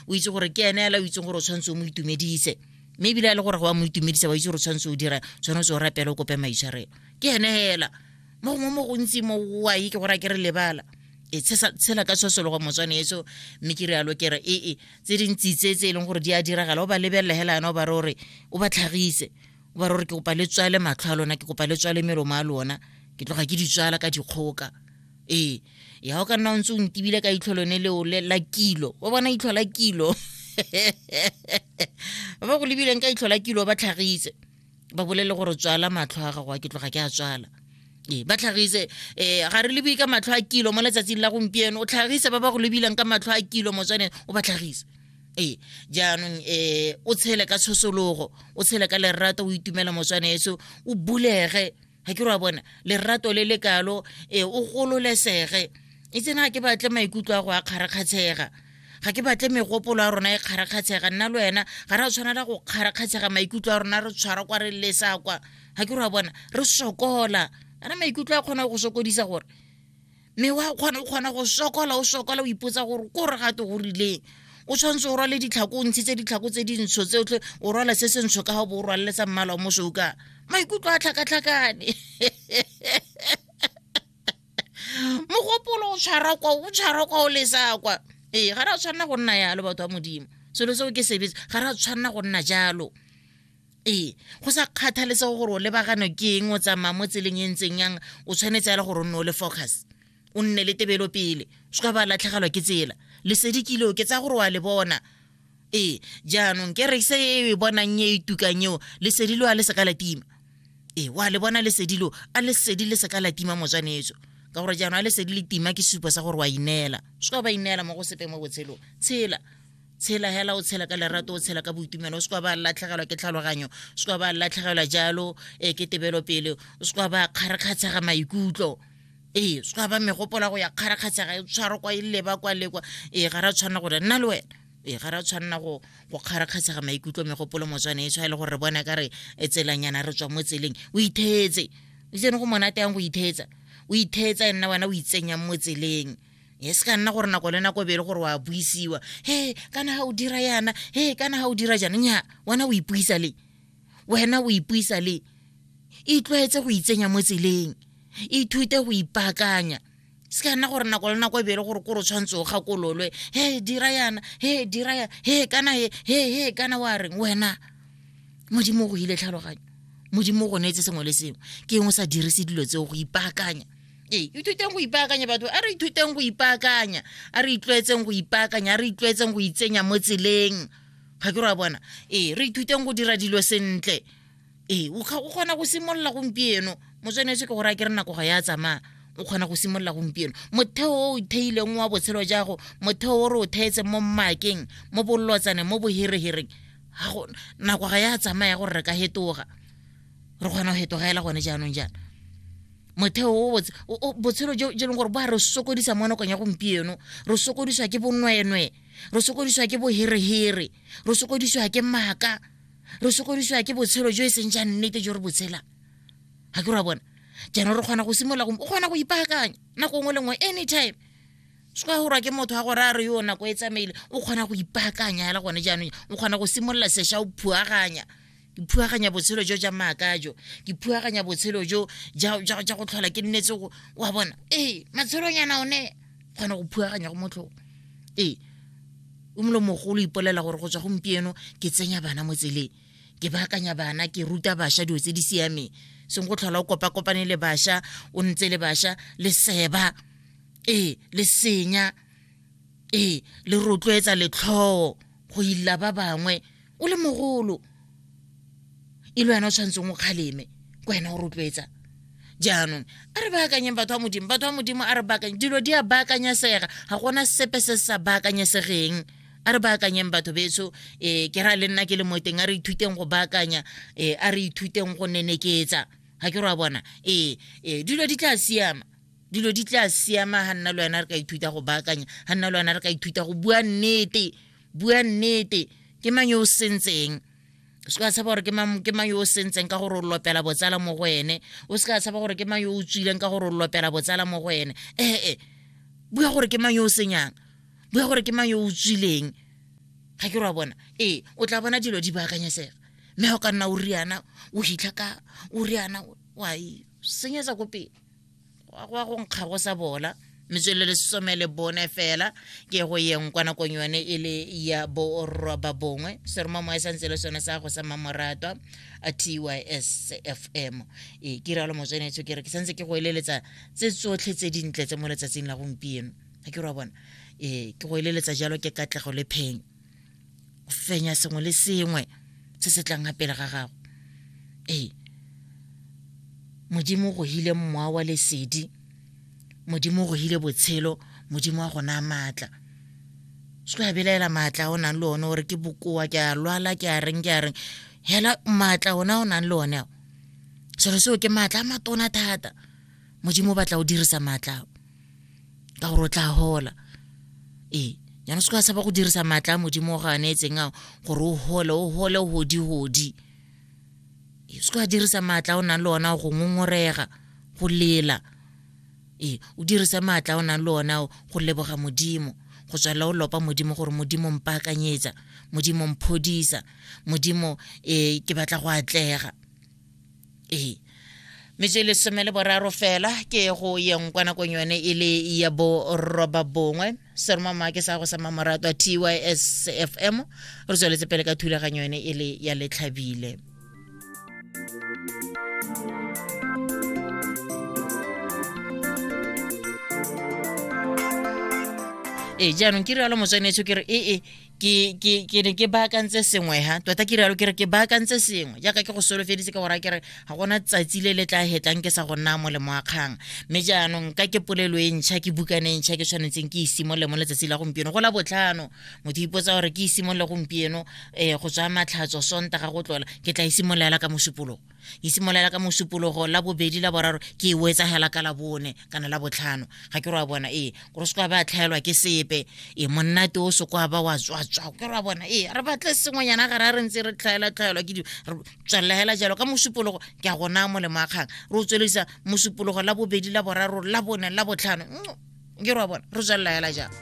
o itse gore ke ene ela o itseng gore o tshwanetse o mo itumedise mme ebile a le gore go wa mo itumedisa wa itse gore tshwanetse o dira tshwanetse o rapele o kope maitshwarelo ke ene hela mo gongwe mo gontsi mo wa ye ke gore a ke re lebala e tshela ka tshosologo motswane eso mme ke rialo ke re ee tse dintsi tse tse e leng gore di a diragala o ba lebelela hela yana o ba re ore o ba tlhagise o ba re gore ke kopa le tswale matlho a lona ke kopa le tswale melomo a lona ke tloga ke di tswala ka dikgoka ee ya o ka nna o ntse o ntebile ka itlho lone leo la kilo o bona itlho la kilo ba go lebileng ka itlho la kilo ba tlhagise ba bolele gore tswala matlho a gago a ke tloga ke a tswala ee ba tlhagise um ga re lebe ka matlho a kilo mo letsatsing la gompieno o tlhagise ba ba go lebilang ka matlho a kilo motswaneng o ba tlhagise ee jaanong um o tshele ka tshosologo o tshele ka lerato o itumela motswaneso o bulege ga ke ra bona lerato le le kalo um o gololesege e tsene ga ke batle maikutlo a go a kgarakgatshega ga ke batle megopolo ya rona e kgarakgatshega nna le wena ga re a tshwanela go kgarakgatshega maikutlo a rona re tshwara kwa re lesa kwa ga ke ra bona re sokola ana maikutlo a kgona go sokodisa gore mme wa kgona o kgona go sokola o sokola o ipotsa gore ko re gate go rileng o tshwanetse o rwale ditlhako o ntshitse ditlhako tse dintsho tse otlhe o rwala se se ntsho ka ga bo o rwalele tsa mmala o mosokang maikutlo a tlhakatlhakane mogopolo o tshwara kwa o tshwara kwa o lesa kwa ee ga re a tshwanela go nna yalo batho ba modimo selo seo ke sebetse ga re a tshwanela go nna jalo ee go sa kgathaletse gore o lebagano ke eng o tsamaya mo tseleng e ntseng yang o tshwanetse ya le gore o nne o le focus o nne le tebelo pele se ka ba latlhegelwa ke tsela lesedi kile o ke tsa gore wa le bona ee jaanong ke re se e bonang e e tukang eo lesedi lo a le seka la tima ee wa le bona lesedi lo a lesedi le seka la tima motswanetso ka gore jaanong a lesedi le tima ke supo sa gore wa ineela se ka ba ineela mo go sepe mo botshelong tshela tshela hela o tshela ka lerato o tshela ka boitumelo o se kwa ba latlhegelwa ke tlhaloganyo o se kwa ba latlhegelwa jalo e ke tebelo pele o se kwa ba kgarakgatshega maikutlo ee se kwa ba megopola go ya kgarakgatshega e tshwaro kwa e leba kwa le kwa ee ga ra tshwanela gore nna le wena ee ga ra tshwanela go go kgarakgatshega maikutlo megopolo motswane e tshwa e le gore re bona ka re e tselanyana re tswa mo tseleng o ithetse o itsene go monate yang go ithetsa o ithetsa nna wena o itsenyang mo tseleng e se ka nna gore nako le nako e be le gore wa buisiwa he kana ga o dira yana he kana ga o dira jana nya wena o ipuisa le wena o ipuisa le itlwaetse go itsenya mo tseleng ithute go ipaakanya se ka nna gore nako le nako e bele gore kore o tshwanetse o gakololwe he dira yana he dira yana he kana he he he kana wa reng wena modimo o go ile tlhaloganyo modimo o go neetse sengwe le sengwe ke eng o sa dirise dilo tseo go ipaakanya ee ithuteng go ipaakanya batho a re ithuteng go ipaakanya a re itlwaetseng go ipaakanya a re itlwaetseng go itsenya mo tseleng ga ke ra bona ee re ithuteng go dira dilo sentle ee o kgona go simolola gompieno motswanetse ke gore a ke re nako ga ya tsamaya o kgona go simolola gompieno motheo o o theileng wa botshelo jago motheo o re o theetseng mo mmakeng mo bolotsaneng mo boherehereng nako ga ya tsamaya gore re ka hetoga re kgona go fetogaela gone jaanong jaana motheo o botse botshelo jo e leng gore ba re sokodisa mo nakong ya gompieno re sokodiswa ke bonwenwe re sokodiswa ke boherehere re sokodiswa ke maaka re sokodiswa ke botshelo jo e seng ja nnete jo re botshelang ga ke ra bona jaanong re kgona go simolola o kgona go ipaakanya nako nngwe le nngwe anytime se ka gorwa ke motho wa gore a re yo nako e tsamaile o kgona go ipaakanya fela gone jaanong o kgona go simolola sesha o phuaganya ke phuaganya botshelo jo ja maaka jo ke phuaganya botshelo jo ja go tlhola ke nnetse go wa bona ee matshelonyana one kgona go phuaganya go motlhong ee o molo mogolo ipolela gore go tswa gompieno ke tsenya bana mo tseleng ke baakanya bana ke ruta bašwa dilo tse di siameng seng go tlhola o kopa-kopane le bašwa o ntse le bašwa le seba ee le senya ee le rotloetsa letlhoo go ila ba bangwe o le mogolo e le wena o tshwanetseng o kgaleme ke wena o rotloetsa jaanong a re baakanyeng batho ba modimo batho ba modimo a re baakanye dilo di a baakanyesega ga gona sepe se se sa baakanyesegeng a re baakanyeng batho betso um eh, ke ra le nna ke le mo teng a re ithuteng go baakanya um a re ithuteng go neneketsa ga ke ra bona ee um dilo di tla siama dilo di tla siama ga nna le wena re ka ithuta go baakanya ga nna le wena re ka ithuta go bua nnete bua nnete ke mang yo o sentseng o se ka tshaba gore ke mang yo o sentseng ka gore o lopela botsala mo go ene o se ka tshaba gore ke mang yo o tswileng ka gore o lopela botsala mo go ene ee bua gore ke mang yo o senyang bua gore ke mang yo o tswileng ga ke re wa bona ee o tla bona dilo di baakanyesega mme ga o ka nna o riana o hitlha ka o riana wa e senyetsa ko pele wa go nkga go sa bola metswelele some le bone fela ke go yeng kwa nakong yone e le ya boroba bongwe seromo moe sa ntse le sone sa go sa mmamoratwa a tys fm e ke realo motswenetsho ke re ke santse ke go eleletsa tse tsotlhe tse dintle tse mo letsatsing la gompieno ga ke re wa bona e ke go eleletsa jalo ke katlego le phenyo o fenya sengwe le sengwe se se tlang ga pele ga gago ee modimo go hile mmoa wa lesedi modimo go hile botshelo modimo wa gona maatla se ya belaela maatla a o nang le one gore ke bokoa ke a lwala ke a reng ke a reng hela maatla ona o nang le one ao selo seo ke maatla a matona thata modimo o batla o dirisa maatla ao ka gore o tla hola ee jaanong se ka saba go dirisa maatla a modimo go a neetseng ao gore o gole o gole godi-godi ee se ka dirisa maatla o nang le ona go ngongorega go lela ee o dirisa maatla o nang le ona go leboga modimo go tswala o lopa modimo gore modimo mpaakanyetsa modimo mphodisa modimo um ke batla go atlega ee metse e le some le boraro fela ke go yeng kwa nakong yone e le ya boroba bongwe seromama ke sa go sa mamoratwa tysfm re tsweletse pele ka thulaganyo yone e le ya letlhabile ee jaanong ke rialo motswanetsho ke re ee ke ke ke ne ke baakantse sengwe ha tota ke rialo ke re ke baakantse sengwe jaaka ke go solofeditse ka gore ke re ga gona tsatsi le le tla hetlang ke sa go nna mo lemo a kgang mme jaanong ka ke polelo e ntšha ke bukane e ntšha ke tshwanetseng ke isimolole mo letsatsi la gompieno go la botlhano motho ipotsa gore ke isimolole gompieno um go tswa matlhatso sontaga go tlola ke tla isimololela ka mosupolong e simolola ka mosupologo la bobedi la boraro ke e etsagela ka la bone kana la botlhano ga ke re wa bona ee gore se kwa ba tlhaelwa ke sepe e monnate o se kwa ba wa tswatswa ke re wa bona ee re batle sengwenyana gare a re ntse re tlhaela tlhaelwa ke dilo re tswelelela jalo ka mosupologo ke a gona molemo a kgang re o tswelisa mosupologo la bobedi la boraro la bone la botlhano mm, ke re wa bona re tswelelela jalo